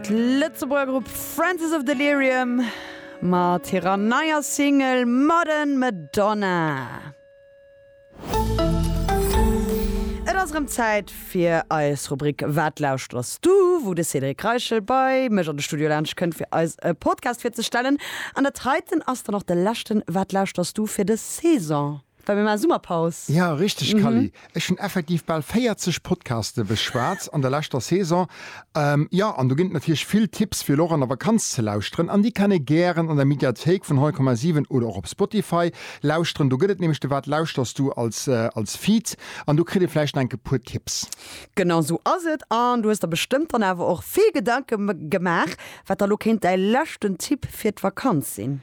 D'Lëtzebuerger Grupp Francis of Delirium mat hirer neier Single Modern Madonna. Et ass erëm Zäit fir eis Rubrik Wat lauschteres du? wou de Cédric Reichel bei mech an de Studio laanscht kënnt fir eis e Podcast virzestellen. An dat heiten ass dann och de leschten Wat lauschteres du? fir dës Saison. Well mir maache Summerpaus. Ja, richteg Kally, ech hunn effektiv bal 40 Podcaste beschwat an der leschter Saison. Jo, an do ginn et natierlech vill Tipps fir elo och an der Vakanz ze lauschteren an déi kann ee gären an der Mediathéik vun 100,7 oder och op Spotify lauschteren. Do gëtt et nämlech de Wat lauschterst du als Feed an do kritt ee vläicht nach enke puer Tipps. Genau esou ass et an du hues der bestëmmt dann awer och vill Gedanke gemaach, wat da elo kéint däi leschten Tipp fir d'Vakanz sinn.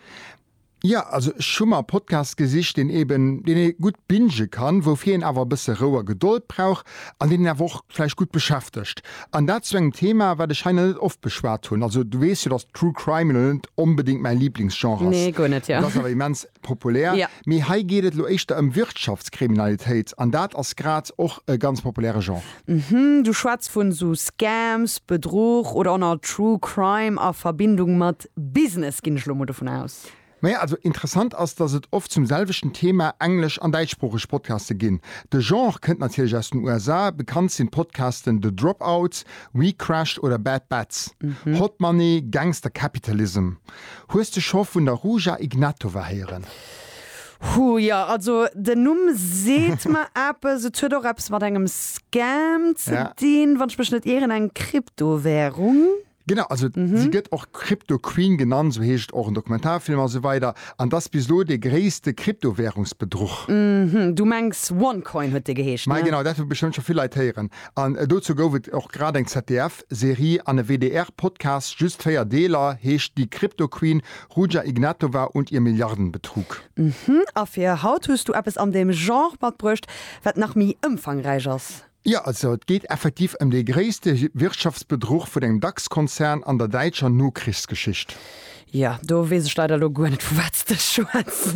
Ja, also ech hu mer e Podcast gesicht, deen eben, deen ee gutt bingen kann, woufir een awer e bësse Rou a Gedold brauch an deen een awer och vläicht gutt beschäftegt. An dat zu engem Thema, wat ech hei nach net oft beschwat hunn. Also du weess jo, datt True Crime elo net onbedéngt mäi Liblingsgenre ass. Nee, guer net, jo. Et ass awer immens populär. Jo. Mee hei geet et elo éischter ëm Wirtschaftskriminalitéit an dat ass grad och e ganz populäre Genre. Mhm, du schwätz vun esou Scams, Bedruch oder och nach True Crime a Verbindung mat Business, ginn ech lo mol dovun aus. Maja, also interessant ass, dass et oft zum selwechten Thema englesch an däitschsproocheg Podcaste ginn. De Genre kënnt natierlech aus den USA, bekannt sinn d'Podcasten The Dropouts, We Crashed oder Bad Batch, Hot Money, Gangster Capitalism. Hues de scho vun der Ruja Ignatova héieren? Hu jo, also den Numm seet mer eppes. Et huet och eppes mat engem Scam ze dinn, wann ech mech net ieren, eng Kryptowährung. Genau, also si gëtt och Crypto Queen genannt, esou heescht et och en Dokumentarfilm a sou weider, an dass bis elo dee gréisste Kryptowärungsbedruch. Du mengs OneCoin huet dee geheescht, ne? Genau, dat hu bestëmmt scho vill Leit héieren. An dozou gouf et och grad eng ZDF-Serie an e WDR-Podcast, just 4 Deeler, heescht Die Crypto Queen, Ruja Ignatova und ihr Milliardenbetrug. A fir haut hues du eppes an deem Genre matbruecht, wat nach méi ëmfangräich ass. Jo, also et geet effektiv ëm dee gréisste Wirtschaftsbedruch vun engem Dax-Konzern an der däitscher Nokrichsgeschicht. Jo, do weess ech leider elo guer net, vu wat s de schwätz.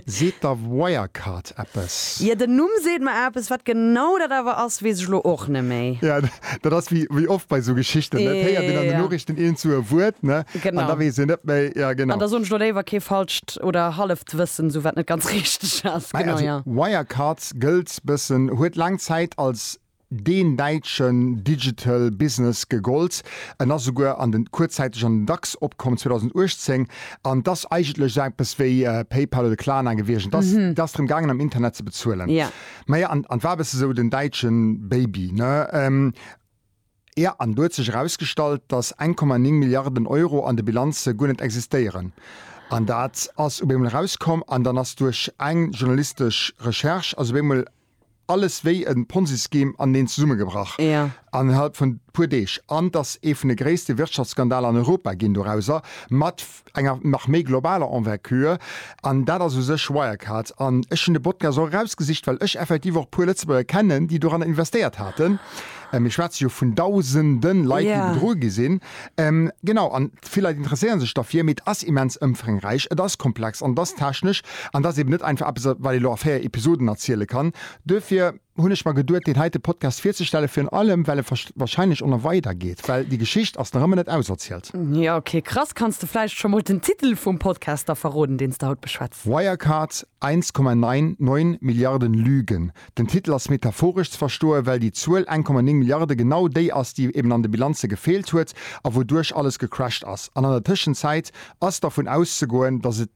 Seet der Wirecard eppes? Jo, den Numm seet mer eppes. Wat genau dat awer ass, weess ech elo och net méi. Jo, dat ass wéi oft bei esou Geschichten, et héiert een an den Noriichten eent zu e Wuert, ne, an da weess een net méi. Jo, genau. An da soen ech elo léiwer kee falscht oder halleft Wëssen, esou wat net ganz richteg ass. Genau, jo. Wirecard gëllt D'Bessen huet laang Zäit als deen däitschen Digital Business gegollt. En ass esouguer an den, kuerzzäiteg an den Dax opkomm 2018. An et ass eigentlech esou eppes wéi PayPal oder Klarna gewiescht. Et ass, et ass drëm gaangen am Internet ze bezuelen. Maja, an, an et war e bësse esou den däitschen Baby, ne? Jo, an do huet sech erausgestallt, datt 1,9 Milliarden Euro an de Bilanze guer net existéieren. An dat ass op eemol erauskomm an dann ass duerch eng journalistesch Recherche ass op eemol alles wéi e Ponzi-Scheme aneneen zesummegebrach innerhalb vun e puer Deeg. An et ass ee vun de gréisste Wirtschaftsskandale an Europa ginn dorauser, mat enger nach méi globaler Envergure, an dat ass u sech Wirecard. An ech hunn de Podcast och erausgesicht, well ech effektiv och e puer Lëtzebuerger kennen, déi doranner investéiert haten. Mir schwätze jo vun Dausende Leit, déi bedru gi sinn. Genau, an vill Leit interesséiere sech derfir, mee et ass immens ëmfrängräich, et ass komplex an et ass technesch. An et ass eeben net einfach eppes, wat ee lo a véier Episoden erziele kann. Duerfir. hunn ech mer geduet deen heite Podcast virzestellen, virun allem well e wahrscheinlech o na weider geet, well déi Geschicht ass nach ëmmer net auserzielt. Jo ok, krass. Kanns de vläicht scho mol den Titel vum Podcast da verroden, deen s de haut beschwätz? Wirecard, 1,99 Milliarden Lügen. Den Titel ass metaphoresch ze verstoen, well déi Zuel 1,9 Milliarde genau déi ass, déi eben an de Bilanze gefeelt huet a wouduerch alles gecrashed ass. An an der Tëschenzäit ass dervun auszegoen, datt et.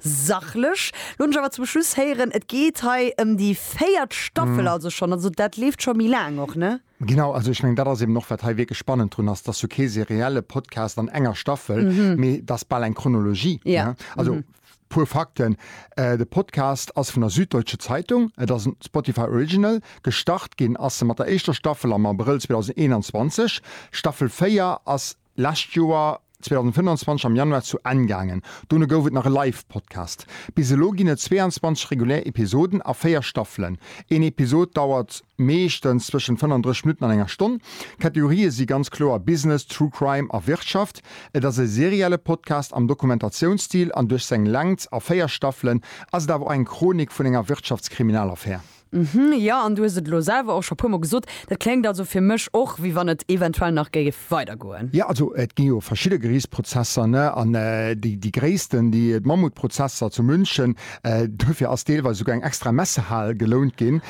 Sachlech. Looss mech awer zum Schluss héieren, et geet hei ëm déi véiert Staffel also schonn. Also dat leeft scho méi laang och, ne? Genau, also ech mengen dat ass eben och wat hei wierklech spannend drun ass, dass jo kee serielle Podcast an enger Staffel, mee et ass bal eng Chronologie, ne? Also puer Fakten, de Podcast ass vun der Süddeutsche Zeitung, et ass en Spotify Original, gestart ginn ass e mat der éischter Staffel am Abrëll 2021, Staffel 4 ass Lescht Joer 2025 am Januar zu Enn gaangen. Dono gouf et nach e Live-Podcast. Bis elo ginn et 22 regulär Episoden a 4 Staffelen. Een Episod dauert meeschtens zwëschen 35 Minutten an enger Stonn. D'Kategorië si ganz kloer Business, True Crime a Wirtschaft. Et ass e serielle Podcast am Dokumentatiounsstil an duerch seng Längt a 4 Staffelen ass et awer och eng Chronik vun enger Wirtschaftskriminalaffär. Hm, jo, an du hues et elo selwer och scho puer mol gesot, dat kléngt also fir mech och, wéi wann et eventuell nach géif weidergoen. Jo, also et gi jo verschidde Geriichtsprozesser, ne, an déi gréissten, déi d'Mammutprozesser zu München, duerfir ass deelweis esouguer eng extra Messehal gelount ginn,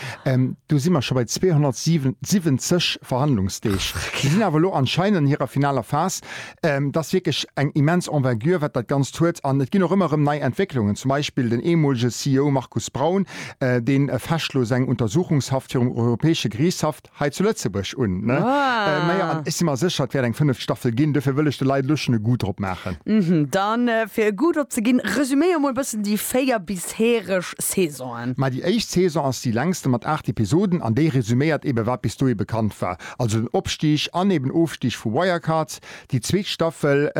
do si mer scho bei 277 Verhandlungsdeeg. Si sinn awer elo anscheinend an hirer finaler Phas. Et ass wierklech eng immens Envergure, wat dat Ganzt huet. An et ginn och ëmmer erëm nei Entwécklungen, zum Beispill den eemolege CEO Markus Braun, dee fecht elo seng Untersuchungshaft virum Europäesche Geriichtshaff hei zu Lëtzebuerg un. Majo, an ech si mer sécher, et wäert eng fënneft Staffel ginn. Duerfir wëll ech de Leit elo schonn e Goût drop maachen. Da fir e Goût drop ze ginn, resuméier mol e bëssen déi véier bisheereg Saisonen. Mä déi éischt Saison ass déi längste mat aacht Episoden an déi resuméiert eeben, wat bis dohi bekannt war. Also den Opstig an eben Ofstig vu Wirecard. Déi zweet Staffel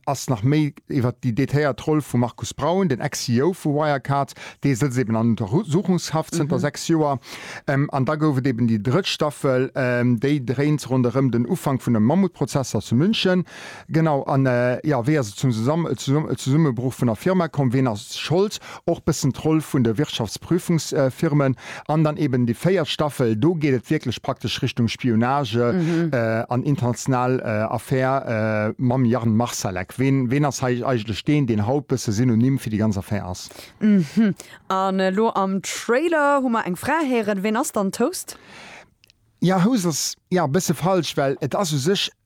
ass nach méi iwwert déi detailéiert Roll vum Markus Braun, den Ex-CEO vu Wirecard. Dee sëtzt eben an Untersuchungshaft zënter 6 Joer. An da gouf et eben déi drëtt Staffel, déi dréint ronderëm den Ufank vun de Mammutprozesser zu München. Genau, an jo, wéi ass et zum Zesummebruch vun der Firma komm? Ween ass Schold? Och bëssen d'Roll vun de Wirtschaftsprüfungsfirmen an dann eben déi véiert Staffel, do geet et wierklech praktesch Richtung Spionage an international Affär mam Jan Marsalek. Ween, ween ass hei eigentlech deen, deen haut bësse Synonym fir déi ganz Affär ass? An elo am Trailer hu mer eng Fra héieren. Ween ass dann d'Host? Jo, Host ass, jo, bësse falsch, well et ass u sech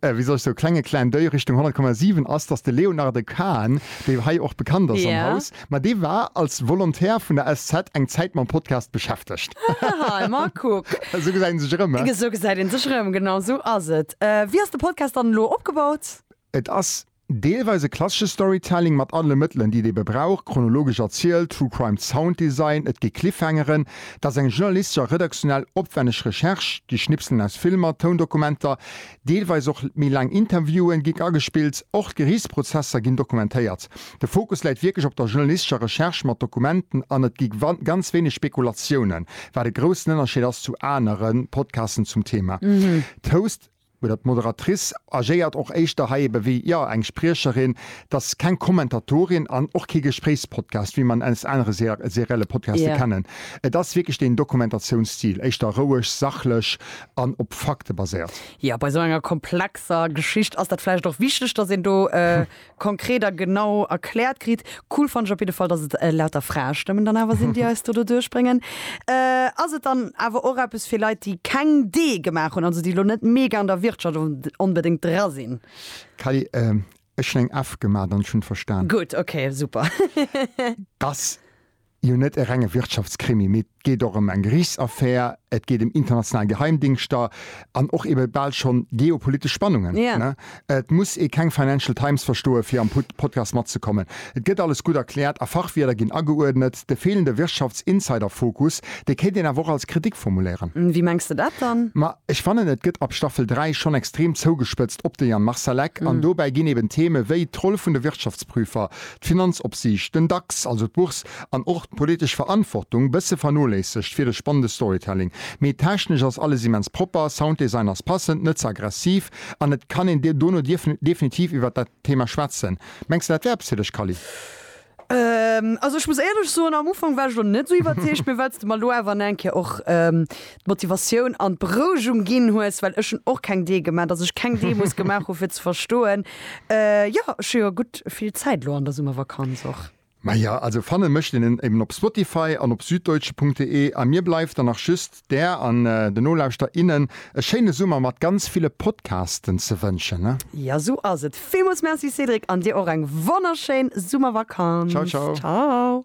äh, wéi soll ech so klenge Clin d'oeil Richtung 100,7 ass, dass de Léonarde Kahn, dee hei och bekannt ass am Haus, ma dee war als Volontär vun der SZ eng Zäit mam Podcast beschäftegt. Haha, ma kuck. Esou gesäit een sech erëm, eh? Esou gesäit een sech erëm, genau esou ass et. Wéi ass de Podcast dann elo opgebaut? Et ass Deelweis e klassesche Storytelling mat alle Mëttelen, déi et ebe brauch, chronologesch erzielt, True Crime Sounddesign, et gi Cliffhangeren, et ass eng journalistesch a redaktionell opwänneg Recherche, gi Schnipselen aus Filmer, Toundokumenter, deelweis och méi laang Interviewen gi agespillt, och d'Geriichtsprozesser ginn dokumentéiert. De Fokus läit wierklech op der journalistescher Recherche mat Dokumenten an et gi ganz wéineg Spekulatiounen, wat e groussen Ënnerscheed ass zu anere Podcasten zum Thema Toast. oder d'Moderatrice agéiert och éischter hei ebe wéi, jo, eng Spriecherin, et ass keng Kommentatorin an och kee Gespréichspodcast, wéi mer en aus anere serielle Podcaste kennen. Et ass wierklech deen Dokumentatiounsstil, éischter roueg, sachlech an op Fakte baséiert. Jo, bei esou enger komplexer Geschicht ass dat vläicht och wichteg, dass een do konkret a genau erkläert kritt. Cool fannen ech op jidde Fall, dass et lauter Fraestëmmen dann awer sinn, déi eis do doduerch bréngen. Ass et dann awer och eppes fir Leit, déi keng Dee gemaach hunn, also déi elo net mega an der Wirtschaft onbedéngt dra sinn? Kelly, Ech hunn eng F gemat an ech hunn et verstan. Gutt, okay, super. Dass. jo net e renge Wirtschaftskrimi, mee et geet och ëm eng Geriichtsaffär, et geet ëm international Geheimdingschter an och ebe bal schonn geopolitesch Spannungen. Et muss ee keng Financial Times verstoe fir am Podcast matzekommen. Et gëtt alles gutt erkläert a Fachwierder ginn ageuerdnet. De feelende Wirtschaftsinsiderfokus, dee kéint een awer och als Kritik formuléieren. Wéi mengs de dat dann? Ma ech fannen, et gëtt ab Staffel 3 schonn extrem zougespëtzt op de Jan Marsalek an dobäi ginn eben Theme wéi d'Roll vun de Wirtschaftsprüfer, d'Finanzopsiicht, den Dax, also d'Bourse, an och d'politesch Verantwortung bësse vernoléissegt fir de spannende Storytelling. Mee technesch ass alles immens propper, Sounddesign ass passend, net ze aggressiv an et kann een dono definitiv iwwert dat Thema schwätzen. Mengs de dat wär eppes fir dech Kally? Also ech muss éierlech soen, am Ufank war ech elo net esou iwwerzeegt, mee well s de mer elo awer an eng Kéier och d'Motivatioun an d'Berouegung ginn hues, well ech hunn och keng Dee gemaach, dass ech keng Dee muss gemaach hunn, fir ze verstoen, jo, ech hu jo gutt vill Zäit elo an der Summervakanz och. Maja, also fanne mécht een en eben op Spotify an op Süddeutsche.de a mir bleift dann nach just, där an den Nolauschter, innen e schéine Summer mat ganz ville Podcasten ze wënschen. Jo, esou ass et. Villmools Merci, Cédric, an dir och eng wonnerschéin Summervakanz. Ciao, ciao. Ciao.